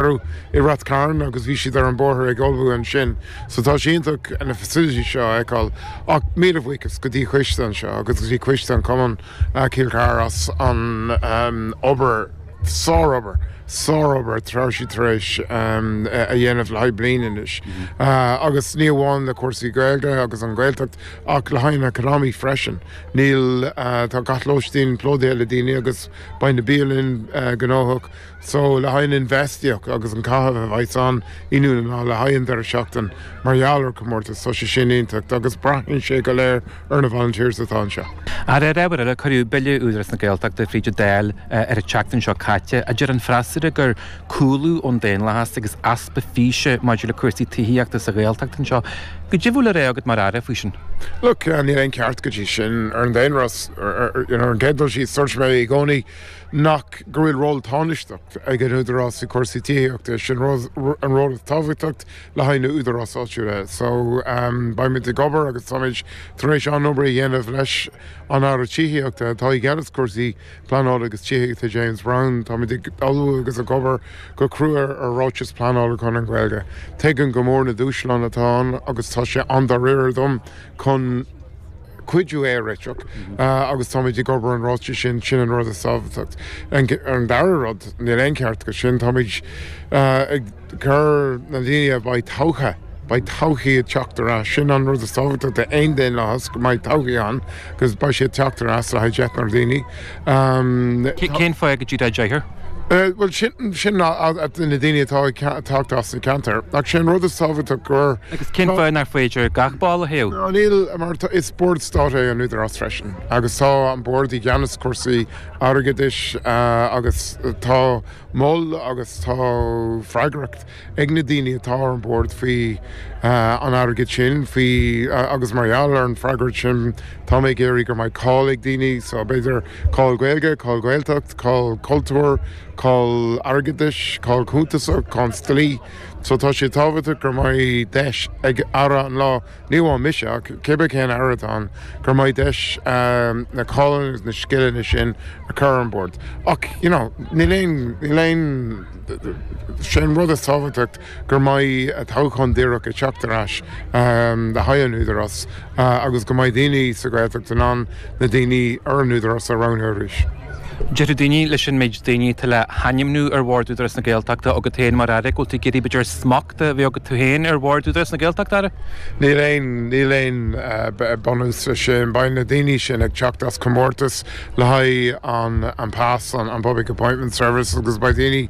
Cuireadh i Rathcarn agus bhí siad ar an bóthar ag ullmhú ansin so tá sé iontach na facilities seo a fheiceáil ach míle buíochas go dtí coiste anseo agus go dtí coiste an Cumann Cill Chartha as an obair, sárobair, sárobair atá siad tar éis a dhéanamh le haghaidh bliain anois agus ní amháin le cúrsaí Gaeilge agus an Ghaeltacht ach le haghaidh an economy freisin. Níl, tá gach lóistín plódaithe le daoine agus beidh na bialann gnóthach. So, le haghaidh an infheistíocht agus an caitheamh a bheidh san áit inniu ná le haghaidh an deireadh seachtain mar gheall ar comórtas, tá sé sin iontach agus breathnaíonn sé go léir ar na volunteers atá anseo. Ar ábhar eile, cuireadh Bille Údarás na Gaeltachta fríd an Dáil ar an tseachtain seo caite a deir an freasúra gur cúlú ón daonlathas agus easpa físe maidir le cúrsaí tithíochta sa Ghaeltacht atá anseo. Goidé atá le rá agat mar Aire faoi sin? Look, níl aon ceart go dtí sin ar an daonlathas, you know, ar an gcéad dul síos, dúirt mé i gcónaí, nach go bhfuil ról tánaisteach ag an Údarás i cúrsaí tithíochta, sin an ról is tábhachtacht le haghaidh na údaráis áitiúla. So, beimid ag obair agus táimid tar éis an obair a dhéanamh leis an Aire Tithíochta atá i gceannas cúrsaí pleanála agus tithíochta, James Browne. Táimid ag ullmhú agus ag obair go crua ar ráiteas pleanála chun an Gaeilge. Tuigim go mór na dúshláin atá ann agus tá sé an-dáiríre dom chun cuidiú é a réiteach agus táimid ag obair an ráiteas sin, sin an rud is tábhachtach. An dara rud, níl aon ceart go sin, táimid ag cur na daoine a bheidh toghtha, beidh toghcháin ag teacht ar ais, sin an rud is tábhachtachta, aon daonlathas go mbeidh toghcháin ann agus beidh siad ag teacht ar ais le haghaidh deichniúr daoine. Tá. Cén fáth nach dtig dáréag? Bhuel, sin na daoine atá ag teacht as na ceantar. Ach sé an rud is tábhachtach gur. Cén fáth nach féidir gach ball a thoghadh? Ná níl, mar tá, is bord stáit é an Údarás freisin agus tá an bord i gceannas cúrsaí airgeadais agus tá ról agus tá freagracht. ag na daoine atá ar an bhord faoi an airgead sin, faoi, agus mar gheall ar an freagracht sin tá mé ag iarraidh go mbeidh cáil ag daoine, so b'fhéidir cáil Gaeilge, cáil Gaeltacht, cáil cultúir, cáil airgeadais, cáil cuntasach, cáil dlí. So tá sé tábhachtach go mbeidh deis ag Aire an lá, Ní hamháin mise ach cibé cén aire atá ann gur mbeidh deis na cáileanna agus na scileanna sin a chur ar an bord. Ach you know níl aon, níl aon, sé an rud is tábhachtach gur mbeidh toghchán díreach ag teacht ar ais le haghaidh an Údarás agus go mbeidh daoine sa Ghaeltacht in ann na daoine ar an Údarás a roghnú arís. Déarfadh daoine, leis an méid daoine atá le hainmniú ar Bhord Údarás na Gaeltachta agat féin mar Aire, go bhfuil tú ag iarraidh b'fhéidir smacht a bheith agat tú féin ar Bhord Údarás na Gaeltachta, Aire? Níl aon, níl aon bunús le sin. Beidh na daoine sin ag teacht as comórtas le haghaidh an an PAS, an Public Appointments Service agus beidh daoine,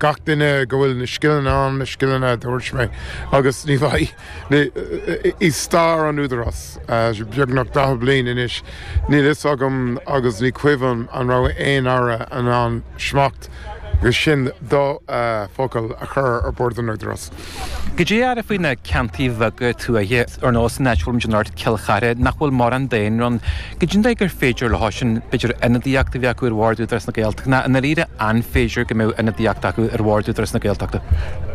gach duine go bhfuil na scileanna ann, na scileanna a dúirt mé agus ní bheidh, Ní i stair an Údarás, beagnach 40 bliain anois, níl fhios agam agus ní cuimhin an raibh aon Aire in ann smacht agus in do focal a chur ar Bord an Údarás. Goidé, a Aire, faoi na ceantair bheaga tuaithe ar nós na háite as arb dom, déan ort, Cill Chartha, nach bhfuil mórán daonra ann, goidé an dóigh gur féidir leo sin, b'fhéidir ionadaíocht a bheith acu ar Bhord Údarás na Gaeltachta ná i ndáiríre an féidir go mbeadh ionadaíocht acu ar Bhord Údarás na Gaeltachta?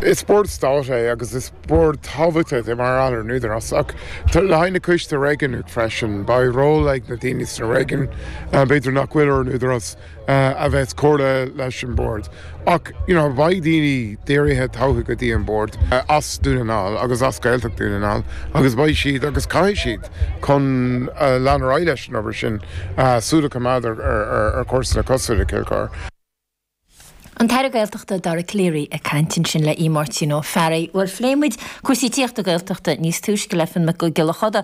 Is Bord Stáit é agus is. Bord tábhachtach é mar atá ar an Údarás ach le haghaidh na coistí réigiúnach freisin. Beidh ról ag na daoine sna réigiún, b'fhéidir nach bhfuil ar an Údarás, a bheas ag comhrá leis an Bhord ach you know beidh daoine dírithe toghtha go dtí an Bord as Dún na nGall agus as Gaeltacht Dún na nGall agus beidh siad agus caithfidh siad chun lean ar aghaidh leis an obair sin súil a choimeád ar chúrsaí cosúil le Cill Chár. An tAire Gaeltachta Dara Calleary ag caint ansin le Aodh Máirtín Ó Fearraigh. Bhuel phléigh muid cúrsaí tithíochta Gaeltachta níos túisce le Fiachna Mac Giolla Chuda.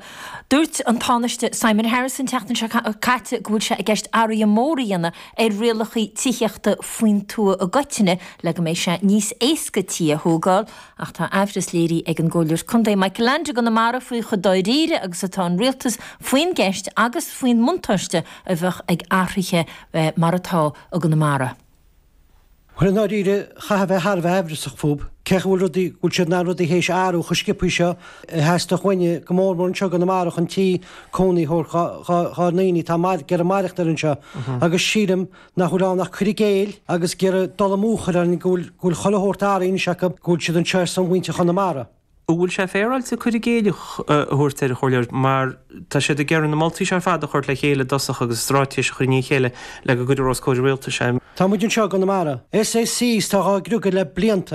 Dúirt an Tánaiste Simon Harris an tseachtain seo caite go bhfuil sé i gceist athruithe móra a dhéanamh ar rialacha tithíochta faoin tuath i gcoitinne le go mbeidh sé níos éasca tithe a thógáil ach tá amhras léirithe ag an gComhairleoir Contae Michael Leainde i gConamara faoi chomh dáiríre agus atá an Rialtas faoin gceist agus faoin mbuntáiste a bheadh ag athruithe mar atá. i gConamara. Bhuel, i ndáiríre, chaithfeá a bheith thar a bheith aimhreasach faoi cé acu bhfuil rudaí, go bhfuil siad na rudaí théis a athrú chomh sciopthaí seo, a theastódh uainn, go mór mór anseo i gConamara, chun tí cónaí a thabhairt dhár ndaoine atá ag iarraidh maireachtaint anseo. Agus sílim nach bhfuil ann ach cur i gcéill agus ag iarraidh dul amú a chur orainn go bhfuil chuile shórt ar a n-aire anois acu, go bhfuil siad anseo ar son mhuintir Chonamara. An bhfuil sé féaráilte cur i gcéill a thabhairt air, a Chomhairleoir, mar tá siad ag iarraidh na moltaí seo ar fad a thabhairt le chéile i dtosach agus stráitéis a chur i ndiaidh a chéile le go gcuirfear os comhair an rialtais é? Tá muid anseo i gConamara. Sé sin, tá muid dhá griogadh le blianta.